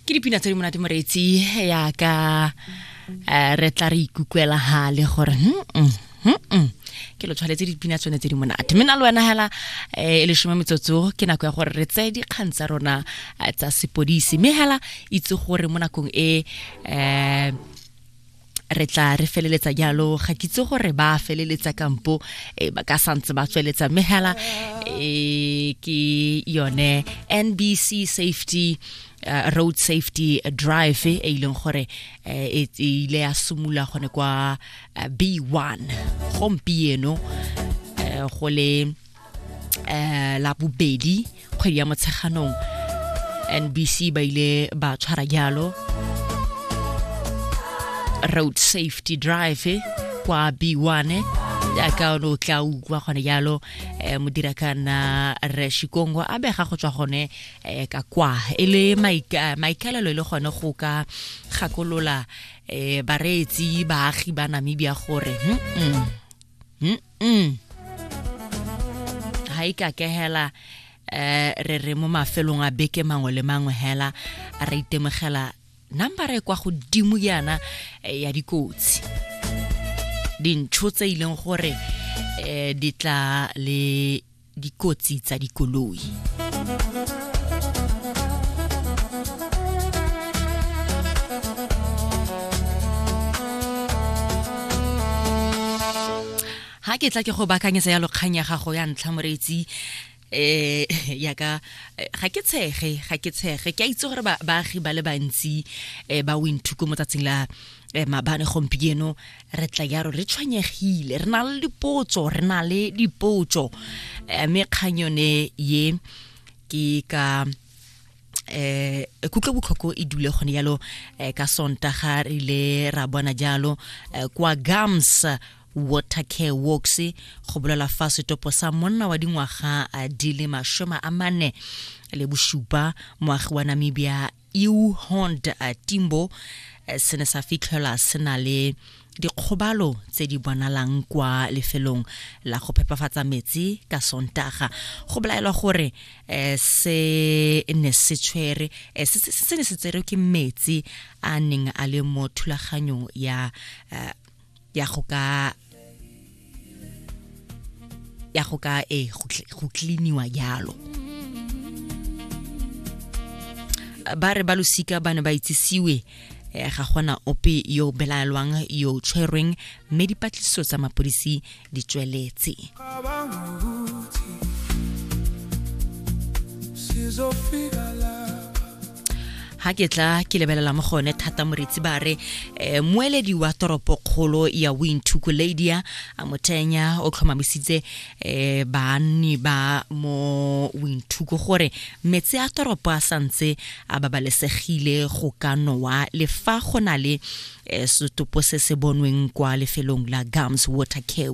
ke dipina tse di monate moreetsi yaka um eh, re tla re ikukwela gale gore hmm, hmm, hmm, ke lo tshwanetse dipina tsone tse di monate mme na le wena hela eh, e lesome metsotso ke nako ya gore re tseye dikgang tsa rona eh, tsa sepodisi mme hela itse gore mo nakong e um re tla re feleletsa jalo ga kitse gore ba feleletsa kampo e, ba ka santse ba tsweletsa mme hela e, ke yone nbc safety uh, road safety drive e e ileng gore e, e ile ya simula gone kwa b1 gompieno go le eh la bobedi kgwedi ya motsheganong NBC ba ile ba tshwara jalo road safety drive eh, kwa B1 jaaka o ne o tla utlwa gone jalo um modira kana re shikongo a bega go tswa gone um ka kwa e le maika- maikaelelo e le gone go ka gakolola um bareetsi baagi ba namibia gore mm, mm, mm, mm ha ika ke hela eh re re mo mafelong a beke mangwe le mangwe hela a re itemogela number e kwa godimo yana eh, ya dikotsi dintsho tse ileng gore eh di tla le dikotsi tsa dikoloi ha ke tla ke go bakanyetsa ya lokgang ya gago ya ntlha moreetsi eh yaka eh, ga ke tshege ga ke tshege ke a itse gore baagi ba le bantsi eh, ba winthuko mo tsatsing la eh, mabane gompieno re tla yaro re tshwenyegile re na le dipotso re na le dipotso eh, mme kgang yone ye ke ka eh kutlo botlhoko e dule gone yalo eh, ka sontaga re ile ra bona jalo eh, kwa gams water care works go bolela fa setopo sa monna wa dingwaga eh, di le mashome a mane le bosupa moagi wa namibia eu hond uh, timbo eh, se ne sa fitlhelwa se na le dikgobalo tse di bonalang kwa lefelong la go phepafatsa metsi ka sontaga go belaelwa gore um se ne se tshwere eh, se ne se tserwe ke metsi a neng a le mo thulaganyong ya ya go ka ya go ka e go cleaniwa yalo ba re ba losika ba ne ba itsisiwe eh, ga gona ope yo belaelwang yo tshwerweng mme dipatlisiso tsa mapodisi di tsweletse sizofika la ha ke tla ke lebelela mo gone thata moretsi ba re um moeledi wa toropokgolo ya wintuku ladia a mothenya o tlhomamisitse um banni ba mo wintuku gore metse a toropo a santse a babalesegile go ka nowa le fa go na le um setopo se se bonweng kwa lefelong la gums water care